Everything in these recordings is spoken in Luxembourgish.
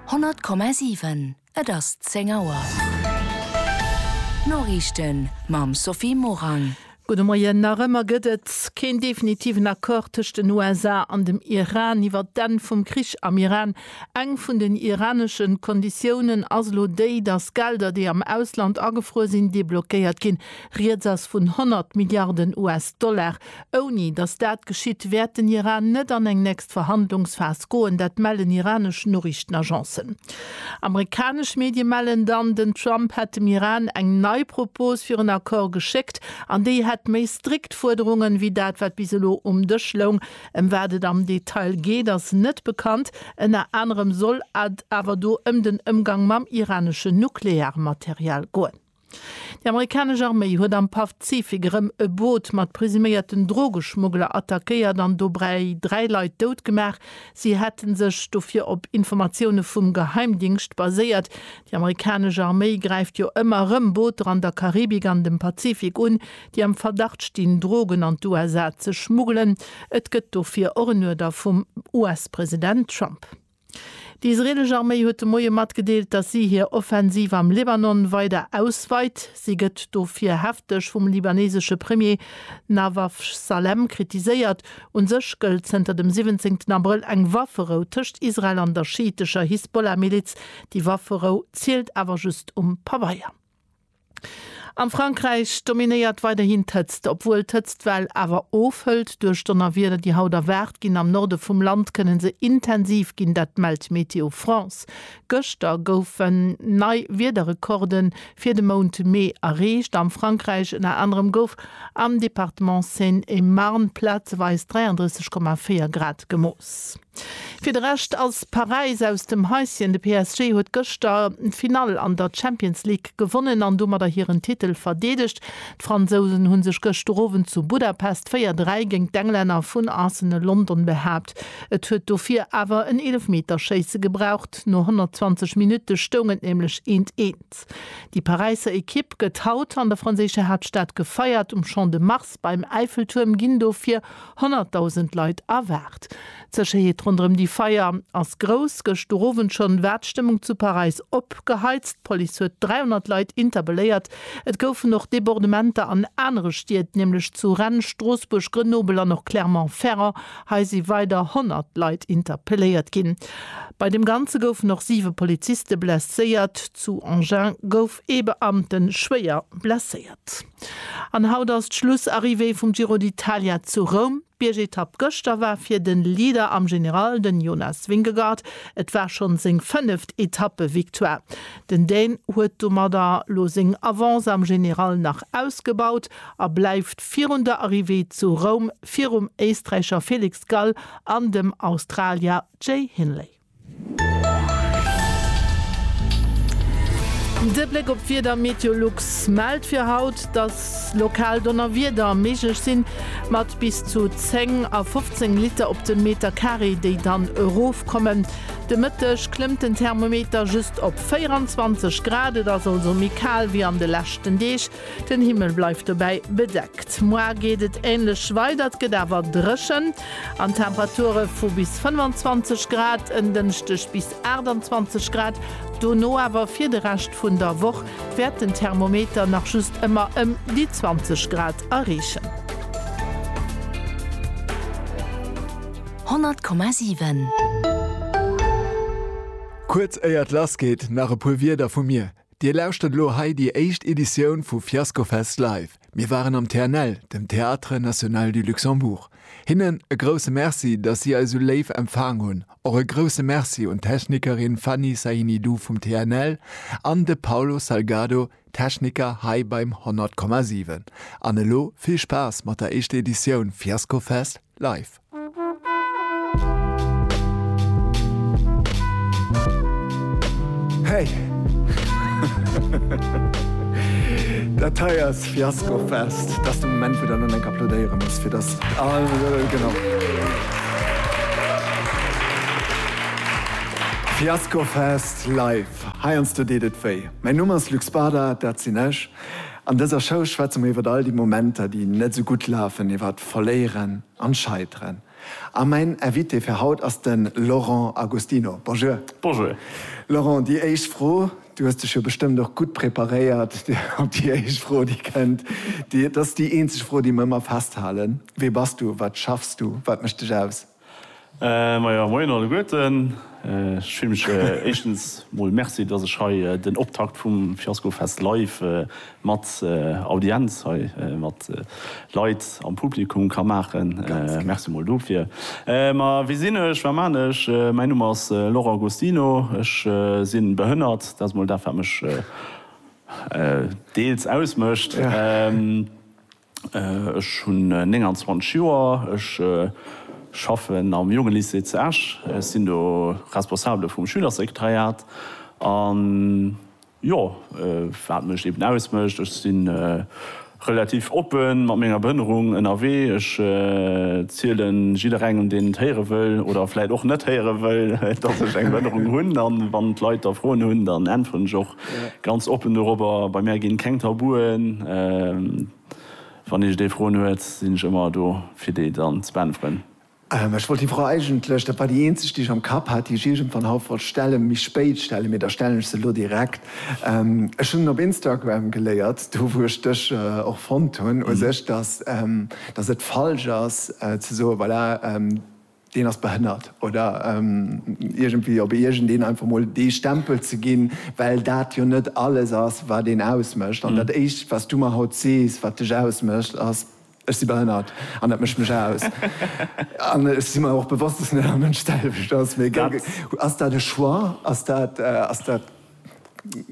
100,7 Et ass 10 Auer. D'Noriichten mam Sophie Morang. Gudde Moien. Nach ëmmer gëtt et keen definitiven Accord tëscht den USA an dem Iran iwwert d'Enn vum Krich am Iran. Eng vun den iranesche Konditiounen ass elo déi, datt Gelder, déi am Ausland agefruer sinn, deblockéiert ginn. Rieds ass vun 100 Milliarden US-Dollar. Ouni datt dat geschitt, wäert den Iran net an eng nächst Verhandlungsphas goen, dat mellen iranesch Noriichtenagencen. Amerikanesch Medie mellen dann, den Trump hätt dem Iran eng nei Propos fir en Accord geschéckt an déi hätt méi strikt Fuerderungen, wéi dat wat bis elo um Dësch loung. Ëm wat et am Detail geet, ass net bekannt. Ënner anerem soll et awer do ëm den Ëmgang mam iraneschen Nuklearmaterial goen. Déi amerikanesch Arméi huet am Pazifik erëm e Boot mat presuméierten Drogeschmuggler attackéiert an dobäi dräi Leit dout gemaach. Si hätte sech dofir op Informatioune vum Geheimdingscht baséiert. Déi amerikanesch Arméi gräift jo ëmmer erëm Booter an der Karibik an dem Pazifik un, déi am Verdacht stinn, Drogen an d'USA ze schmuggelen. Et gëtt dofir och en Uerder vum US-President Trump. Déi israelesch Arméi huet de Moie matgedeelt, datt si hir Offensiv am Libanon weider ausweit. Si gëtt dofir hefteg vum libanesesche Premier Nawaf Salem kritiséiert. U sech gëllt zënter dem 17 Abrëll eng Wafferou tëscht Israel an der schiitescher Hisbollah-Miliz. Déi Wafferou zielt awer just um Pabeier. Am Frankräich dominéiert weiderhin d'Hëtzt. Obwuel d'Hëtztwell awer ofhëlt duerch Donnerwieder, déi haut erwaart ginn, am Norde vum Land kënne se intensiv ginn. Dat mellt Météo France. Gëschter goufen nei Wiederrekorde fir de Mount Mee erreecht a Frankräich. Ënner anerem gouf am Departement Seine-et-Marne plazeweis 33,4 Grad gemooss. Fir de Rescht ass Paräis aus dem Häisschen. De PSG huet gëschter d'Finall an der Champions League gewonnen an domadder hiren Titel verdeedegt. D'Fransousen hu sech gëschter Owend zu Budapest 4, 3 géint d'Englänner vun Arsenal London behaapt. Et huet dofir awer en Eelefmeterschéisse gebraucht. No 120 Minutte stoung et nämlech eent, eent. Déi Paräisser Ekipp gëtt haut an der franséischer Haaptstad gefeiert. Um Champ de Mars Fest beim Äifeltuerm ginn dofir 100.000 Leit erwaart. D'Sécherheet ronderëm déi Feier ass grouss. Gëschter Owend schonn war d'Stëmmung zu Paräis opgeheizt. D'Police huet 300 Leit interpelléiert. Et goufen och Debordementer an anere Stied, nämlech zu Rennes, Stroossbuerg, Grenoble an och Clermont-Ferrand. Hei si weider 100 Leit interpelléiert ginn. Bei dem Ganze goufen och siwe Poliziste blesséiert. Zu Engins gouf ee Beamte schwéier blesséiert. An haut ass d'Schlussarrivée vum Giro d'Italia zu Roum. D'Biergetapp gëschter war fir de Leader am General, den Jonas Vingegaard. Et war schonn seng fënneft Etappe-Victoire. Den Dän huet domadder lo seng Avance am General nach ausgebaut a bleift virun der Arrivée zu Roum virum Éisträicher Felix Gall an dem Australier Jay Hindley. De Bléck op d'Wieder, Meteolux mellt fir haut, dass lokal Donnerwieder méiglech sinn, mat bis zu 10 a 15 Liter op de Meter Carré, déi dann erofkommen. De Mëtteg klëmmt den Thermometer just op 24 Grad, et ass also méi kal wéi an de leschten Deeg. Den Himmel bleift dobäi bedeckt. Moar geet et änlech weider, et gëtt awer dréchen an d'Temperature vu bis 25 Grad en Dënschdeg bis 28 Grad dono. Awer fir de Rescht vun der Woch wäert den Thermometer nach just ëmmer ëm déi 20 Grad erreechen. 100,7. Kuerz éier et lass geet, nach e puer Wierder vu mir. Dir lauschtert elo hei déi éischt Editioun vu Fiascofest Live. Mir waren am TNL, dem Théâtre National du Luxembourg. Hinnen e grousse Merci, dass si eis esou léif empfaang hunn. Och e grousse Merci un d'Technikerin Fanny Sahinidou vum TNL an de Paulo Salgado, Techniker hei beim 100,7. An elo vill Spaass mat der éischter Editioun Fiascofest Live. Hey! Dat hei ass Fiaskofest. Dat ass de Moment, wou der elo eng applaudéiere muss, fir dass all Lëll genau. Fiaskofest live. Heiansdo deet et wéi. Mäin Numm ass Luc Spada, dat sinn ech. An dëser Show schwätze mer iwwer all déi Momenter, déi net esou gutt lafen, iwwer d'Verléieren, An scheiteren. A mäin Invité fir haut ass den Laurent Agostino. Bonjour. Bonjour. Laurent, déi éischt Fro, du hues dech jo bestëmmt och gutt preparéiert op déi éischt Fro déi kënnt. Dat ass déi eenzeg Fro déi mer ëmmer festhalen. Wee bass du? Wat schaffs du? Wat mécht dech aus? Majo, moien alleguerten. Ech fillen mech éischtens mol Merci, dass ech hei den Optakt vum Fiaskofest live mat Audienz hei mat Leit am Publikum ka maachen. Merci mol dofir. Ma wie sinn ech, wat man ech? Mäin Numm ass Laurent Agostino. Ech sinn behënnert, dat ass mol dat wat mech deels ausmécht. Ech hunn 29 Joer, ech schaffen am Jongelycée zu Esch, ech sinn do Responsabele vum Schülersekretariat. A jo, wat mech eben ausmécht, ech si relativ oppe mat menger Behinnerung ënnerwee, ech ziele jidderengem, deen et héiere wëll oder vläicht och net héiere wëll, datt ech eng Behinnerung hunn. A wann d'Leit da Froen hunn, dann äntweren ech och Ganz oppen dorobber, bei mär ginn keng Tabuen. Wann iech dee Froen huet, sinn ech ëmmer do fir déi dann ze beäntweren. Ech wollt déi Fro eigentlech, dat war déi eenzeg déi ech am Kapp hat, déi ech iergendwann haut wollt stellen, méi spéit stellen, mee da stellen ech se elo direkt. Ech hunn op Instagram geléiert, do wou ech dech och fonnt hunn u sech, dass et falsch ass ze soen, voilà, deen ass behënnert oder iergendwéi op iergendeen einfach mol dee Stempel ze ginn, well dat jo net alles ass, wat een ausmécht. An dat Éischt, wat s du mer haut sees, wat dech ausmécht, ass, Ech si behënnert an dat mécht mech aus. An ech si mer och bewosst, dass net all Mënsch d'selwecht ass. Mee ass dat e Choix? Ass dat.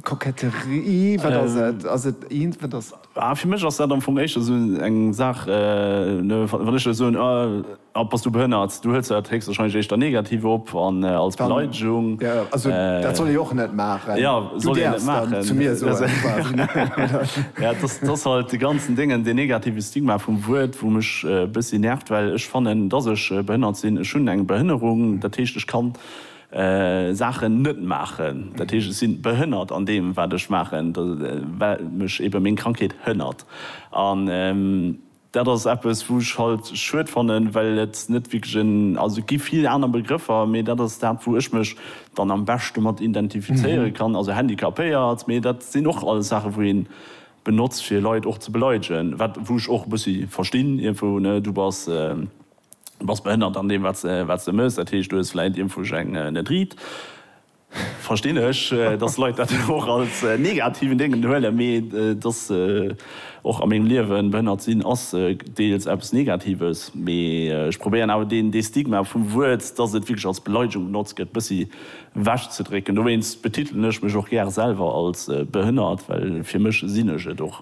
Koketterie, wat ass et? Ass et eent, wat ass. Ah, fir mech ass dat am Fong éischter esou eng Saach, wann ech der soen, ah, bass du behënnert, du huels dat héchstwarscheinlech éischter negativ op an als Beleidegung. Ja, also dat soll ee och net maachen. Ja, soll een net maachen. Du däerfs dann zu mir soen, quasi. Ja, et ass, et ass halt dee ganzen Déngen, deen negative Stigma vum Wuert, wou mech e bëssi nervt, well ech fannen, dass ech behënnert sinn. Ech hunn eng Behënnerung, dat heescht, ech kann. Saachen net maachen, dat heescht ech sinn behënnert an deem wat ech maachen, well mech ebe meng Krankheet hënnert. An dat ass eppes wou ech halt schued fannen, well et net wierklech en, also et gi vill aner Begrëffer, mee dat ass dat wou ech mech dann am beschte mat identifizéiere kann, also handicapéiert, mee dat sinn och alles Saache wou een benotzt fir Leit och ze beleidegen, wat wou ech och e bëssi verstinn iergendwou, ne, du bass. Du bass behënnert an deem wat se mëss, dat heescht du hues vläit iermfuerg eng net riit. Verstinn ech, dass Leit dat och als negativen Déngen huelen, mee et ass och a mengem Liewen, behënnert sinn ass deels eppes Negatives, mee ech probéieren awer deen dee Stigma vum Wuert, dass et wierklech als Beleidegung benotzt gëtt, bëssi ewech ze drécken. Dowéinst betitelen ech mech och gär selwer als behënnert, well fir mech sinn ech et och.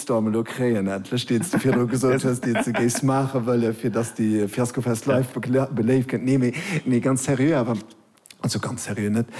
Shitstorm elo kréien endlech, deen s de virdru gesot hues, deen s de géifs maache wëllen, fir datt de Fiaskofest live beléift gëtt. Nee, mee, mee ganz seriö awer, also ganz seriö net,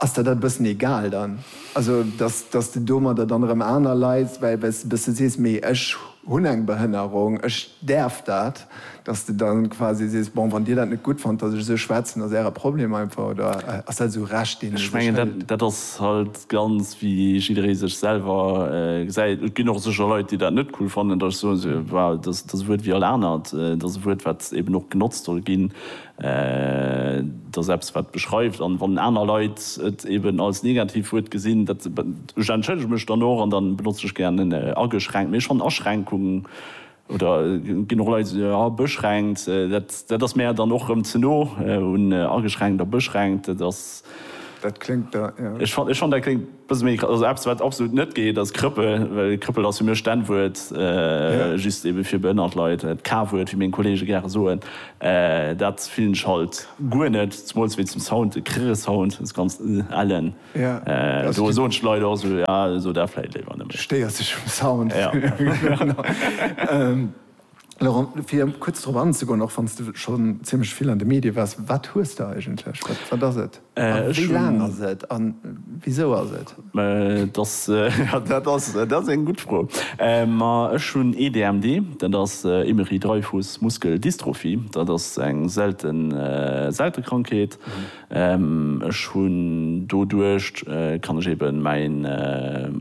ass der dat e bëssen egal dann? Also datt, datt s de domadder dann erëm aner Leit, well, well s de e bësse sees, mee ech hunn eng Behënnerung, ech däerf dat. Dass de dann quasi sees, bon, wann dir dat net gutt fannt, dass ech esou schwätzen, ass äre Problem einfach, oder ass dat esou Recht, deen ee Ech sech mengen, dat, hëlt? dat ass halt ganz, wéi jidderee sech selwer gesäit. Et ginn och sécher Leit, déi dat net cool fannen, dass ech soen, se, well dass dass e Wuert wéi all anert, et ass e Wuert, wat eben och genotzt soll ginn, et ass eppes, wat beschreift. An wann aner Leit et eben als Negativwuert gesinn, dat, ech entschëllege mech dann och an da benotze ech gären en ageschränkt. Mee ech fannen Aschränkung. Oder et ginn och Leit, déi soen, ah, beschränkt, dat ass mär dann och erëm ze no un ageschränkt a beschränkt. Dat ass. Dat kléngt da, jo. Ech fannen, dat kléngt e bësse méi, also eppes, wat absolut net geet, ass Krëppel. Well Krëppel ass fir mech d'N-Wuert, just ebe fir behënnert Leit, d'K-Wuert, wéi meng Kollege gäre soen. Dat fillen ech halt guer net, zemools wéi zum Sound, de Krrr-Sound, dës ganz ellen. Do soen d'Leit och esou, jo, so dat vläit léiwer net méi. Stéiers dech um Sound? Laurent, fir kuerz drop anzegoen, och wann s de schonn zimmlech vill an de Medie waars, wat hues de eigentlech? Wat ass et? A wéi laang ass et? A wisou ass et? Dat ass eng gutt Fro. Ma ech hunn EDMD, dat ass Emery-Dreifuss-Muskel-Dystrophie. Dat ass eng selte Krankheet. Ech hunn doduercht kann ech eben mäin,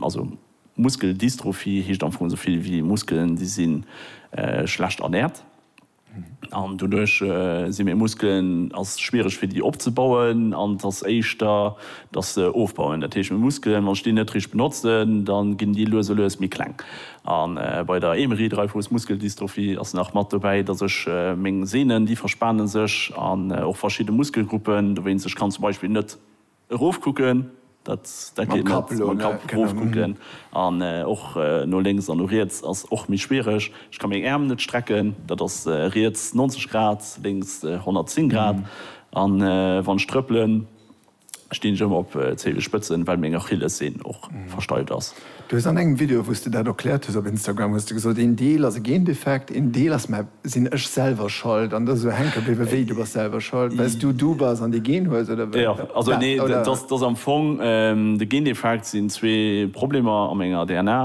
also Muskeldystrophie heescht am Fong esou vill wéi Muskelen déi si schlecht ernährt an doduerch si meng Muskelen ass schwiereg fir déi opzebauen an et ass éischter dass se ofbauen. Dat heescht meng Muskelen wann ech déi net richteg benotzen dann ginn déi lues a lues méi kleng A bei der Émery Dreifuss Muskeldystrophie ass nach mat dobäi, dass ech meng Sehnen, déi verspane sech, an och verschidde Muskelgruppen, dowéinst ech kann zum Beispill net erofkucken, dat dat geet net, mam Kapp erofkucken, an och no lénks an no riets ass och méi schwiereg. Ech ka meng Äerm net strecken, dat ass riets 90 Grad, lénks 110 Grad, an wann ech trëppelen, Stinn ech ëmmer op Zehenspëtzen, well meng Achillessehn och versteift ass. Du hues an engem Video wous de dat erkläert hues op Instagram hues de gesot, een Deel ass e Gendefekt, een Deel ass, mä sinn ech selwer schold an dass esou Hänker bliwwe wéi? Du bass selwer schold wells du du bass an dee Gen hues oder wat? Jo, also nee, dat ass am Fong de Gendefekt sinn zwee Problemer a menger DNA.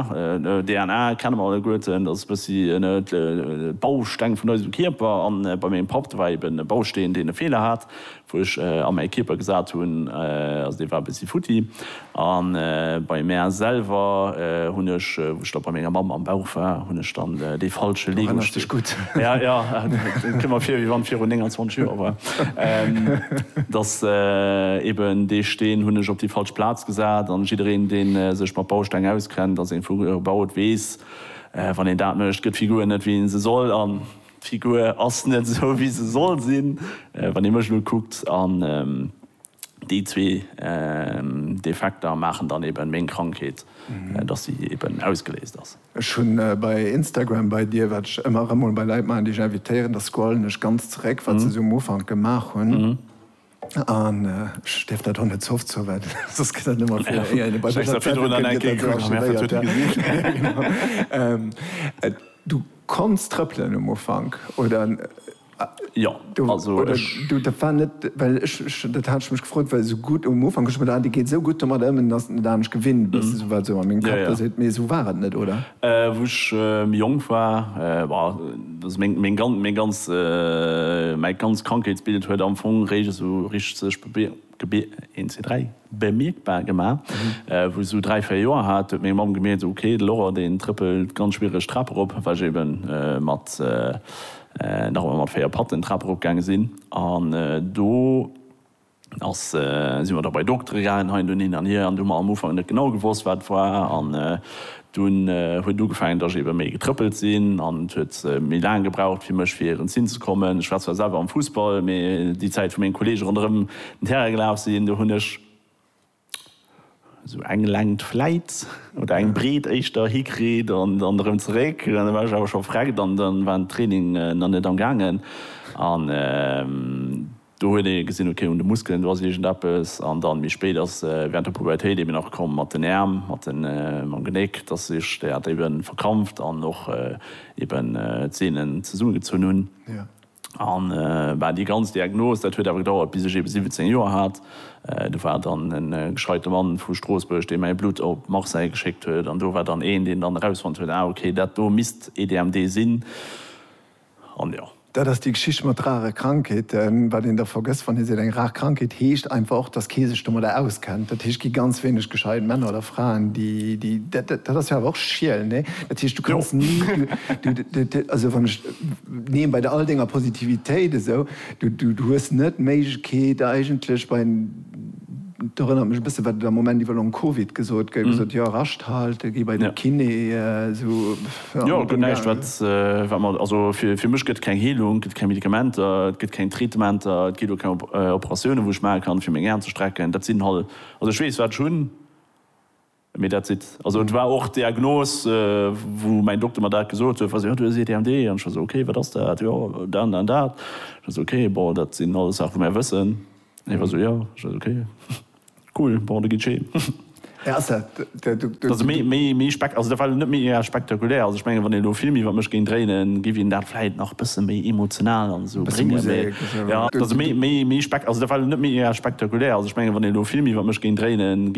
DNA kenne mer alleguerten, dat ass e bëssi de Bausteng vun eisem Kierper an bei mengem Papp, do war eben e Bausteen deen e Feeler hat, Wou ech a mäi Kierper gesat hunn, also dee war e bëssi futti. A bei mär selwer hunn ech, wou ech da bei menger Mamm am Bauch war, hunn ech dann dee falsche Lego-Steen. Du erënners dech gutt. Ja, ja, et kënnt mer vir, wéi wann et virun 29 Joer war. Dass eben dee Steen hunn ech op déi falsch Plaz gesat. An jiddereen, dee sech mat Bausteng auskennt, ass ee vu gebaut, weess, wann een dat mécht, gëtt d'Figur net, wéi ee se soll. D'Figur ass net esou wéi se soll sinn, wann ee mech elo kuckt, an déi zwee Defekter maachen dann eben meng Krankheet, dass si eben ausgeléist ass. Ech hunn bei Instagram bei dir, wat ech ëmmer erëm mol bei Leit maachen, déi ech invitéieren, da scrollen ech ganz zeréck, wat se esou um Ufank gemaach hunn. An ech dierf dat och net ze oft soen, well soss gëtt dat net méi fir éier een e bei mech an d'Zeitung kënnt, gëtt dat sou archivéiert. Du konns trëppelen um Ufank, oder? Jo, also ech. Dat war net, well ech, dat hat ech mech gefrot, well esou gutt um Ufank hu ech gemengt, ah dee geet esou gutt domadder ëm, ass et net anescht gewinnt, wat esou an mengem Kapp da seet. Mee esou war et net, oder? Wou ech méi jonk war, Meng ganz Krankheetsbild huet am Fong réischt esou richteg bemierkbar gemaach, wou ech esou dräi, véier Joer hat. Do huet meng Mamm gemierkt, Ok, de Laurent, deen trëppelt ganz schwiereg d'Trap erop, well ech ebe nach ëmmer mat véier Patten d'Trap erop gaange sinn. An do. Da si mer da bei de Doktere gaangen, hei an do, hin an hier, an do hu mer am Ufank net genau gewosst, wat et war. An dunn huet ugefaangen, datt ech ebe méi getrëppelt sinn, an et huet méi laang gebraucht fir mech fir erëm z'hinn ze kommen. Ech war zwar selwer am Fussball, mee déi Zäit, wou meng Kolleege ronderëm den Terrain gelaf sinn, do hunn ech. Sou eng Längt vläit, oder eng Breet éischter, hikritt an dann erëm zeréck. An da war ech awer scho vreckt an da war den Training nach net am gaangen. An do huet ee gesinn, ok, un de Muskelen, do ass iergendeppes. An dann méi spéit ass während der Pubertéit eben nach komm mat den Äerm, mat mam Genéck, dass sech dat eben verkrampft an och eben d'Sehnen zesummegezunn hunn. An bah, déi ganz Diagnos, dat huet awer gedauert, bis ech eben 17 Joer hat. Do war dann e gescheite Mann vu Stroossbuerg, dee mäi Blutt op Marseille geschéckt huet. An do war dann een, deen dann erausfonnt huet, Ah, okay, dat do misst EDMD sinn. An jo. Dat ass déi Geschicht mat rare Krankheeten. Wat een da vergësst, wann ee seet, eng rar Krankheet, heescht einfach och, dass kee sech domadder auskennt. Dat heescht, et gi ganz wéineg gescheit Männer oder Fraen, déi, déi, dat ass jo awer och Schiel, nee? Dat heescht, du kanns ni, du, du, also wann ech. Neen, bei all denger Positivitéit esou, du hues net d'Méiglechkeet eigentlech bei, et erënnert mech e bësse wat et am Moment iwwer Long Covid gesot gëtt, gesot, jo, Rascht halte, gi bei de Kiné, esou, jo. Jo, et gëtt näischt wat wat mer, also fir mech gëtt et keng Heelung, gëtt keng Medikamenter, et gëtt keng Traitementer, et ginn och keng Operatioune wou ech maache kann fir meng Aen ze strecken, dat sinn halt, also ech weess wat ech hunn. Mee dat sidd. Also et war och d'Diagnos, wou mäin Dokter mer dat gesot huet, wa se, jo, du hues EDHD. An ech war esou, okay, wat ass dat? Jo, dat an dat an dat. Ech war esou, okay, bon, dat sinn alles Saache wou mär wëssen. An hie war esou, jo. Ech war esou, okay, cool, bon, da gitt scheen. Mä ass dat de. Méi, méi spek, also dat war net mega spektakulär. Also ech mengen, wann een elo vill méi iwwer mech géing dréinen, géif een dat vläit nach bësse méi emotional an esou bréngen. Mä jo, also méi, méi spek, also dat war net mega spektakulär. Also ech mengen, wann een elo vill méi iwwer mech géing dréinen, géif.